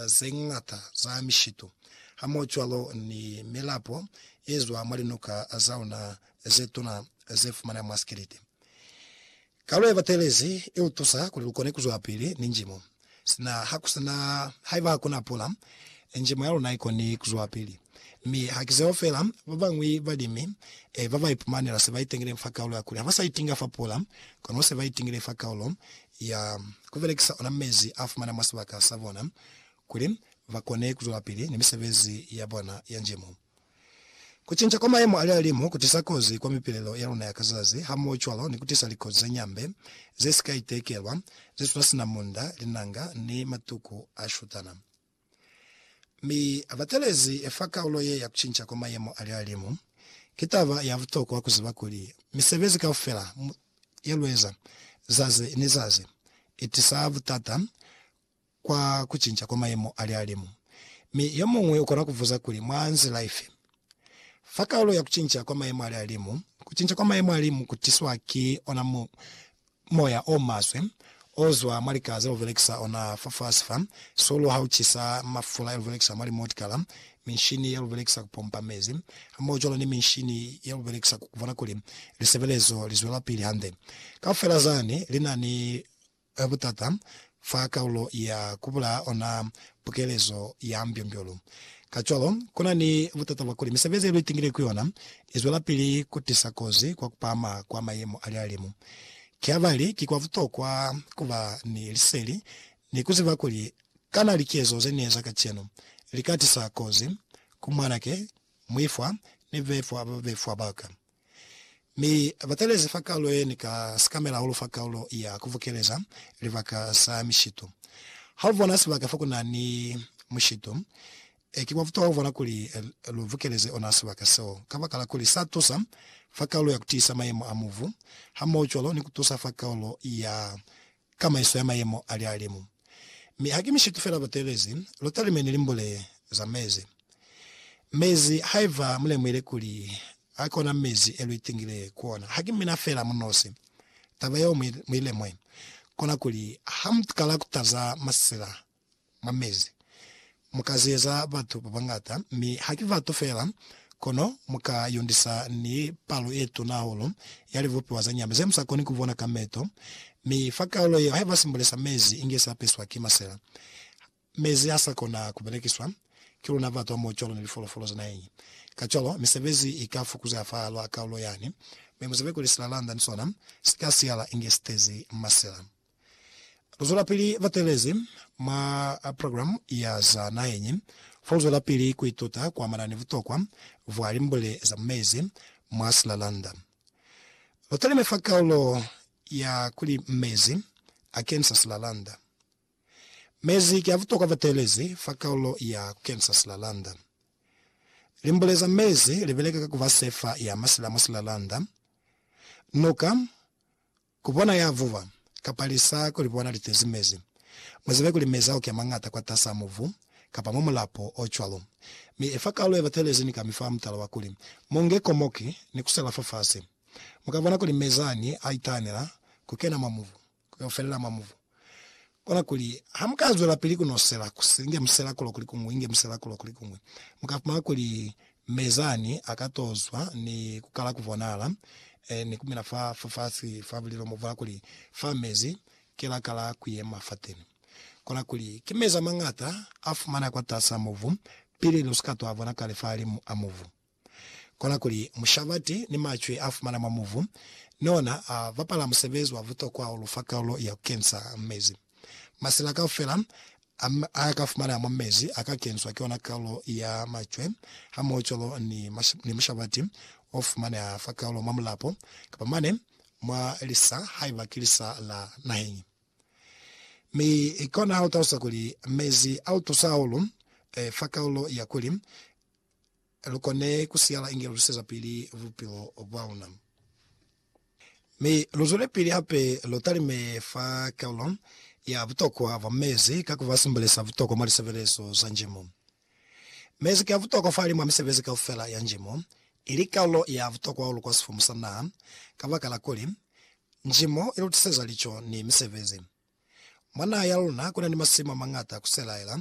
ze ñata za mishitu hamohocwalo ni milapo ye zwa mwa linuka za luna ze tuna ze fumaneha mwa sikiliti. Kalu ye batelezi i lu tusa kuli lu kone ku zwelapili ni njimo. Sina ha ku si na, haiba ha ku na pula, njimo ya luna i koni ku zwelapili. Mi ha ki zeo fela, ba bañwi balimi ba ba ipumanela se ba itingile fa kaulo ya kuli ha ba sa itinga fa pula, kono se ba itingile fa kaulo ya ku belekisa ona mezi a fumana mwa sibaka sa bona kuli ba kone ku zwelapili ni misebezi ya bona ya njemu. Ku cinca kwa mayemo a lihalimu ku tisa kozi kwa mipilelo ya luna ya ka zazi, hamohocwalo ni ku tisa likozi ze ñambe ze si ka itekelwa, ze suna sina munda, linanga, ni matuku a shutana. Mi abatelezi efa kaulo ye ya kucinca kwa mayemo a lihalimu. Ki taba ya butokwa kuziba kuli, misebezi kaufela ye lueza zazi ni zazi itisa butata kwa kucinca kwa mayemo a lihalimu. Mi yomuñwi ukona kubuza kuli, Mwa nzila ifi? Fa kaulo ya kucinca kwa mayemo a lihalimu, kucinca kwa mayemo a lihalimu kutiswa ki ona Moya o maswe o zwa mwa likala ze lu belekisa ona fafasi fa sulu ha u cisa, mafula e lu belekisa mwa limotikala, minshini ye lu belekisa ku pompa mezi, hamohocwalo ni minshini ye lu belekisa ku bona kuli lisebelezo li zwelapili hande. Kaufela zani li na ni butata fa kaulo ya ku bulaa ona pukelezo ya mbyombyo-lu. Kacwalo, ku na ni butata bwa kuli misebezi ye lu itingile ku yona i zwelapili ku tisa kozi kwa ku pahama kwa mayemo a lihalimu. Ki habali ki kwa butokwa ku ba ni liseli ni ku ziba kuli kana likezo ze ni eza kacenu li ka tisa kozi ku mwanake, muifwa, ni bebefwa ba babefwa ba ka. Mi ba talezi fa Kalulo ye ni ka sikamela hahulu fa Kalulo ya Kuvukeleza Libaka sa Mishitu. Ha lu bona sibaka fa ku na ni mushitu, ki kwa butokwa ku bona kuli lu vukeleze ona sibaka seo, kabakala kuli sa tusa fa Kalulo ya Kutiisa Mayemo a Mubu, hamohocwalo ni ku tusa fa Kalulo ya ka maiso ya mayemo a lihalimu. Mi haki mishitu fela botelezi, lu talimeni limbule za mezi. Mezi, haiba mu lemuhile kuli a ki ona mezi e lu itingile ku ona, haki mina fela mu nosi. Taba yeo mu i lemwe, kona kuli ha mu kala ku taza masila mwa mezi. Mu ka zeza batu ba bañata, mi ha ki batu fela, kono mu ka yundisa ni palo ye tuna hahulu ya libupiwa za nyama ze mu sa koni ku bona ka meto. Mi fa kaulo yeo, haiba simbule sa mezi inge sa peswa ki masela, mezi ha sa kona ku belekiswa ki luna batu hamoho cwalo ni lifolofolo za naheng ye. Kacwalo, misebezi i ka fukuzeha fahal'a kaulo yani, mi muzebe kuli silalanda ni sona si ka siala inge si tezi masela. Luzwelapili batelezi mwa programu ya za naheñi foluzwelapili kuituta kuamana ni butokwa bwa limbule za mu mezi mwa silalanda. Lutalime fa kaulo ya kuli Mezi Akenisa Silalanda. Mezi ki abutokwa batelezi fa kaulo ya Kukenisa Silalanda. Limbule za mezi libeleka ka kuba sefa ya masila mwa silalanda. Nuka Ku bona ya vuba, kapa lisa ku li bona li tezi mezi. Mu zibe kuli mezi a uke mañata kwatas'a mubu, kapa mwa mulapo o cwalo. Mi efa kalu ye batelezi ni kami fa mutala wa kuli, mu nge komoki ni ku sela fafasi. Mu ka bona kuli mezi ani a itanela ku kena mwa mubu, ku yo felela mwa mubu. Kola kuli, ha mu ka zwela pili ku no sela, ku si inge musela kulo kuli kuñwi, inge musela kulo kuli kuñwi, mu ka fumana kuli Mezani a ka to zwa ni ku kala ku bonahala, eh, ni ku mina fa, fa fasi fa bulilo mo, fola kuli, Fa mezi ki la kala ku yema fateni. Kola kuli, ki mezi a mañata a fumaneha kwa tasi a mubu, pili lu si ka to a bona kale fahalimu a mubu. Kona kuli mushabati ni macwe a fumana mwa muvu ni ona a bapala musebezi wa butokwa hahulu fa kalulo ya ku kensa mezi. Masela kaufela a a ka fumaneha mwa mezi a ka kenswa ki ona kalulo ya macwe hamohocwalo ni ni mushabati o fumaneha fa kalulo mwa mulapo kapa mane mwa lisa haiba ki lisa la naheñi. Mi kona ha u talusa kuli mezi a u tusa hahulu fa kalulo ya kuli lu kone ku siyala inge lu lwisezapili bupilo bwa luna. Mi lu zwelepili hape lu talime fa karolo ya butokwa bwa mezi ka ku ba sumbeleza butokwa mwa lisebelezo za njimo. Mezi ki a butokwa fahali mwa misebezi kaufela ya njimo, ili karolo ya butokwa hahulu kwa sifumu sa naha, kabakala kuli, njimo i lu tiseza lico ni misebezi. Mwa naha ya luna ku na ni masimu a mañata ku selaela